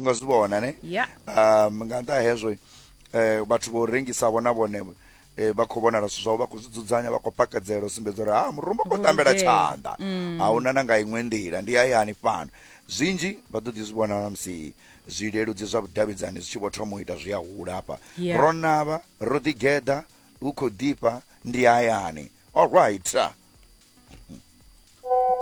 nga zwi vhona ne yeah. um nga nṱha hezwo eh, vhathu vho rengisa vhona vhone eh, vha khou vhonala zwithu zwavho vha khou zwi dzudzanya vha khou pakedzela u sumbedza uri ha murumba khou tambela tshanḓa mm. a huna na nga iṅwe nḓila ndi hayani fhano zwinzhi vha ḓo ḓi zwi vhona na musi zwileludzi zwa vhudavhidzani zwi tshi vho thoma u ita zwi a hula hafha yeah. ro navha ro ḓigeḓa hu khou ḓifha ndi hayani allright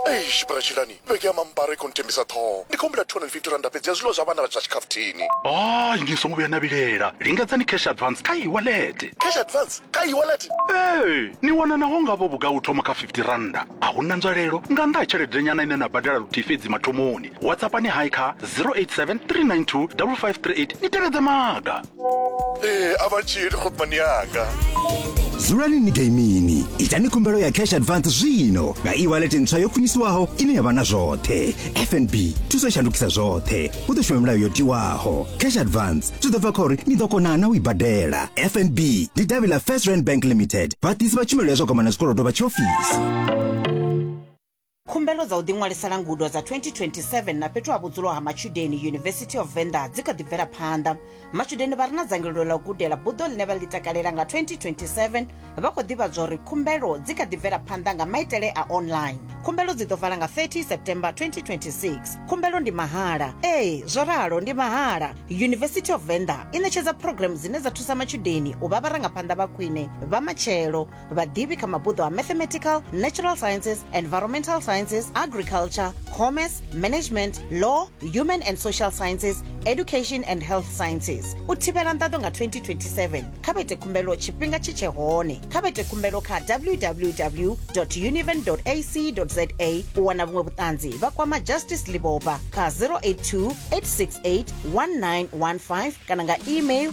eish bratshilani vhege ya mambara i khou nthembisa ṱhoho ndi khou humbula 250 randa fhedzi ya zwiḽiwa zwa vhana vha zwa tshikhafuthini hayi ni songo vhuya na vhilela lingedzani cash advance kha iwalete cash advance kha iwalete ee ni wana naho ngavho vhugai u thoma kha 50 randa a hu na nzwalelo nga nnḓa ha tshelede nyana ine na badela luthihi fhedzi mathomoni whatsappani hai kha 087 392 5538 ni tevhedze maga ee a vha tshili khopani yanga dzulani ni gaimini itani khumbelo ya cash advance zwino nga e-wallet ntswa yo khwiniswaho ine ya vha na zwoṱhe fnb thuso shandukisa zwoṱhe hu ḓo shuma milayo yo tiwaho cash advance zwi ḓo bva kha uri ni ḓo kona na u i badela fnb ndi davhi ḽa first rand bank limited vhaḓisi vha tshumelo ya zwa kwamana zwikolodo vha tshiofisi Khumbelo dza u ḓiṅwalisela ngudo dza 2027 na fhethu ha vhudzulo ha matshudeni University of Venda dzi kha ḓi bvela phanḓa. Matshudeni vha re na dzangalelo ḽa u gudela buḓo ḽine vha ḽi takalela nga 2027 vha khou ḓivhadzwa uri khumbelo dzi kha ḓi bvela phanḓa nga maitele a online. Khumbelo dzi ḓo vala nga 30 September 2026. Khumbelo ndi mahala. Ee, zwo ralo ndi mahala. University of Venda i ṋetshedza program dzine dza thusa matshudeni u vha vharangaphanḓa vha khwine vha matshelo. vhaḓivhi kha mabuḓo a mathematical natural sciences environmental sciences agriculture commerce management law human and social sciences education and health sciences u thivhela nḓaḓo nga 2027 kha vhete khumbelo tshifhinga tshi tshe hone kha vhete khumbelo kha www univen ac za u wana vhuṅwe vhuṱanzi vha kwama justice liboba kha 082 868 1915 kana nga email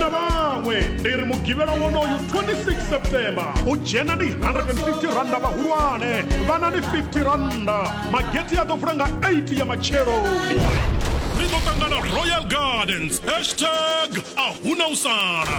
na vhaṅwe ndi ri mugivhela wonoyu 26 september u dzhena ndi 150 randa vhahulwane vhana ndi 50 randa mageti a ḓo vula nga 8 ya matshelo ri ḓo ṱangana royal gardens hashtag a huna u sala